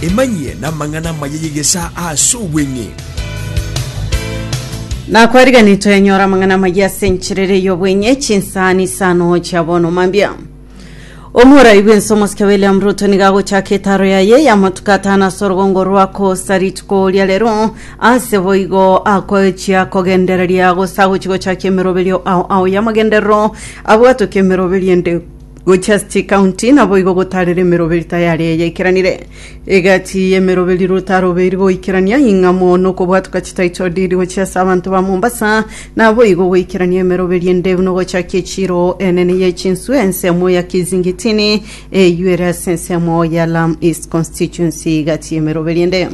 Emanyie namang'ana amaya y'egesaa ase obweng'e. Nakwariganire twenyora amang'ana amaya ase encherere y'obweng'e chinsani isano chia bono mambia omorai bwense omosike william ruto niga agochaka etaro yaye y'amatuko atano ase orogongo rwa kosa rituko oria rero ase boigo akochia kogendereria gose agochi gochakia emeroberio ao ao y'amagenderero abwatoke emeroberio ende Gochia chikaunti naboigo gotarera emeroberi tayari eye ikeranire. Egati y'emeroberi rotarobeiri goikerania ing'amo nokobwatuka chitaito diri gochia ase abanto ba Mombasa naboigo goikerania emeroberi endebu nogochakia echiro enene ye chinsu ensemo ya Kizingitini eyio ere ase ensemo ya Lam East Constituency gati y'emeroberi ende.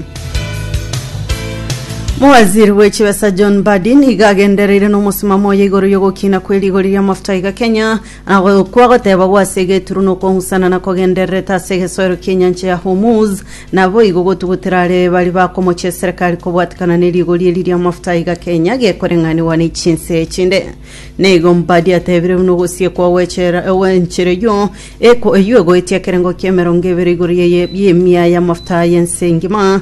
Mowaziri bwe chibesa John Mbadi nigo agendereire nomosimamo oye igoro yogokina kwe rigori ria mafuta iga Kenya Agwo okwo goteba gw'ase egeturu nokong'usana na kogendererete ase egesoero ki'enyancha ya Hormuz, naboigo gotugutera are baria bakomochia eserekari kobwatekana ne rigori eri ri'amafuta aiga Kenya gekoreng'anigwa ne chinse echinde. Neigo Mbadi atebire buna ogosiekwa gw'echera gw'enchera eyio eko eyio egoetia ekerengo ki'emerongo ebere igoro y'emiaya y'amafuta y'ense engima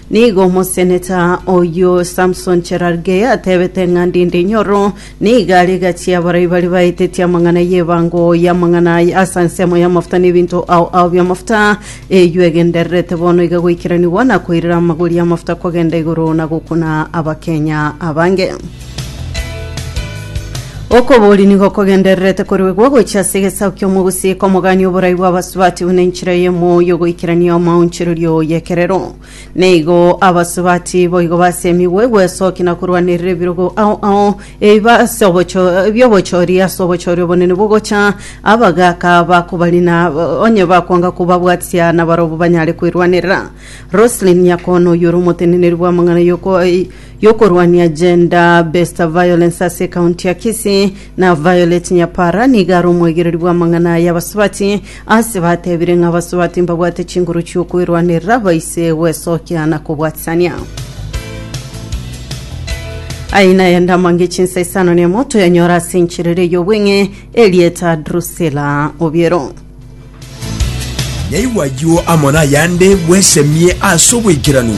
Nigo omoseneta oyio Samson Cherargei atebete ng'a ndinde inyoro nigo are gati abarai baria baeteti amang'ana y'ebango y'amang'ana aya ase ensemo y'amafuta na ebinto ao ao bi'amafuta eyio egendererete bono iga goikeranigwa na koirera amagori y'amafuta kogenda igoro na gokuna abakenya abange. Okobori nigo kogendererete koruegwa gochia ase egesaku ki'omogusii komogania oborai bw'abasubati buna enchera y'emoo y'ogoikerania omoonchorerio y'ekerero. Neigo abasubati boigo basemigwe gwesokia na korwanerera ebirogo ao ao ebibe ase obocho- bi'obochori ase obochori obonene bogocha abagaaka bakobarina onye bakwanga kobabwatia nabarobwo banyare kwerwanerera. Roselyn Nyakono oyio ore omoteneneri bw'amang'ana y'oko- yokorwania gender based violence ase ekaunti ya Kisii na Violet Nyapara nigo are omoigereri bw'amang'ana aya abasubati ase batebire ng'a abasubati mbabwate chinguru chi'okwerwanerera baise gwesokia na kobwatisania. Aya nayende amange chinsa isano nemo toyanyora ase enchera ere y'obweng'e erieta Drusilla Obiero. Naigwa ayio amo nayande bwesemie ase obwaikeranu.